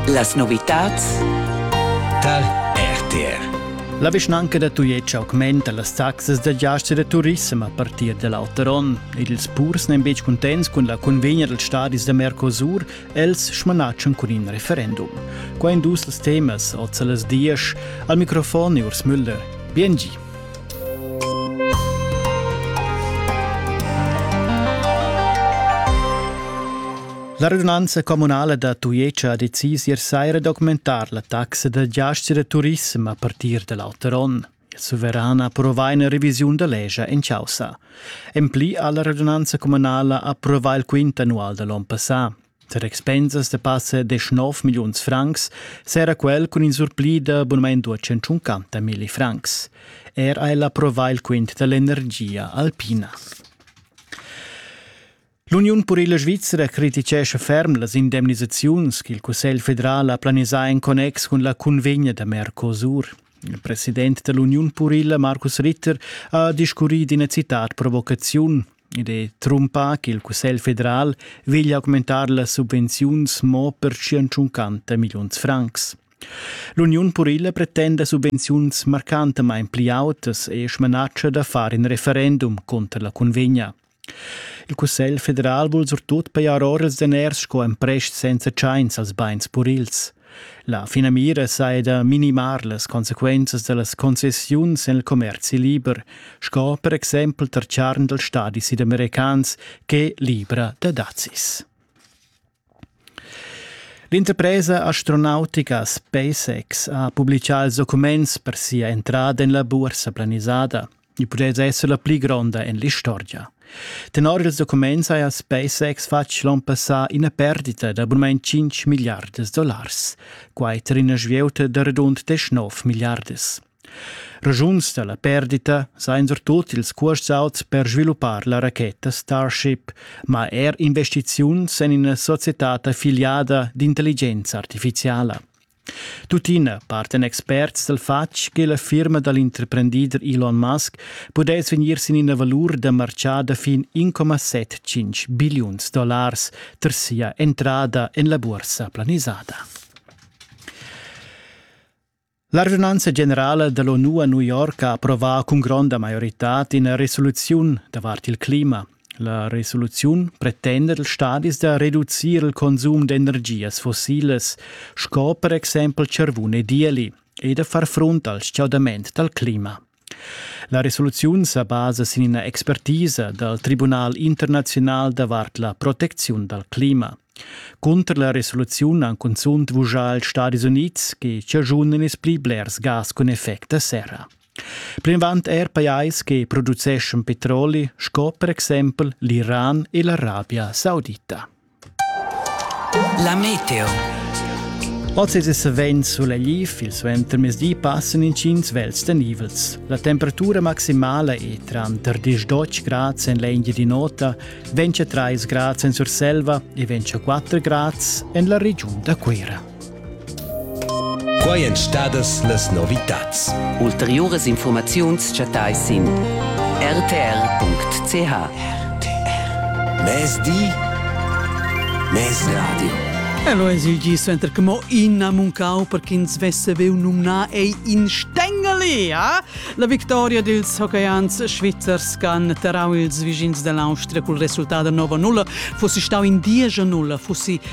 Las novitads tar RTR. La vischnanca da Tujetsch augmenta las taxas da giast e da turissem a partir da l'auter onn ed ils purs n'èn betg cuntents cun la convegna dals stadis da Mercosur, els smanatschan cun in referendum. Qua in dus els temas, oz a las diesch. Al microfon è Urs Müller. Biengi. La radunanza communala da Tujetsch ha decis ier saira documentar la taxa da giaschi da turissem a partir da l'auter onn. Il suveran approvà ina revisiun da legia en causa. En pli ha la radunanza communala approvà il quint annual da l'onn passà. Tar expensas da passa 19 milliuns francs s'era quel cun in surpli da abonament da 150 milli francs. Er ha el approvà il quint dall'energia alpina. L'Uniun purila svizra criticescha ferm las indemnisaziuns ch'il Cussegl federal ha planisà en connex cun la cunvegna da Mercosur. Il president da l'Uniun purila Markus Ritter ha discurrì d'ina citat provocaziun. Id è trumpà ch'il Cussegl federal veglia augmentar las subvenziuns mo per 150 milliuns francs. L'Uniun purila pretenda subvenziuns marcantamain pli autas e smanatscha da far in referendum conter la cunvegna. Il Cussegl federal vul surtut pajar ora ils daners sco emprest senza tschains als bains purils. La finamira saja da minimar las consequenzas da las concessiuns en il commerzi liber, sco per exempel tar charn dals stadis sudamericans ch'è libra da dazis. L'interpresa astronautica SpaceX ha publichà ils documents per sia entrada en la buorsa planisada. Il pudess esser la pli gronda en l'istorgia. Tenor ils documents haja SpaceX fatg l'onn passà ina perdita d'abunament 5 miliardas dollars, quai tar ina svieuta da radund 19 miliardas. Raschuns da la perdita sajan surtut ils cuosts auts per sviluppar la racheta Starship, ma er investiziuns en ina societad affiliada d'intelligenza artificiala. Tuttina partan experts dal fatg che la firma dal interprendider Elon Musk pudess vegnir sin ina valur da martgà da fin 1,75 billiuns dollars tar sia entrada en la bursa planisada. La radunanza generala dall'ONU a New York ha approvà cun gronda maioritad ina resoluziun davart il clima. La resoluziun pretenda dals stadis da reducir il consum d'energias fossilas sco per exempel charvun e dieli e da far frunt al stgaudament dal clima. La resoluziun sa basa sin ina expertisa dal Tribunal internaziunal davart la protecziun dal clima. Cunter la resoluziun han cunzunt vuschà ils Stadis Unids che chaschunan ils pli blers gas cun effect da serra. Plinavant er pajais che produceschan petroli sco per exempel l'Iran e l'Arabia Saudita. La meteo. Oz è savens sulegliv, il suentermezdi passan intgins vels tenivels. La temperatura maximala è tranter 10-12 grads en l'Engia di nota, 23 grads en Surselva e 24 grads en la regiun da Cuira. Quai èn stadas las novitads. Ulteriuras infurmaziuns chattais sin rtr.ch. RTR. Mezdi, mezradio. Hello es il gi suenter che mo ina muncau per ch'ins vesse veu numnar ei in Stengeli, ja? La victoria dils hockeys svizzers che han terrau ils vischins dell'Austria col resultat da 9-0 fussi stau in diesch 0 fussi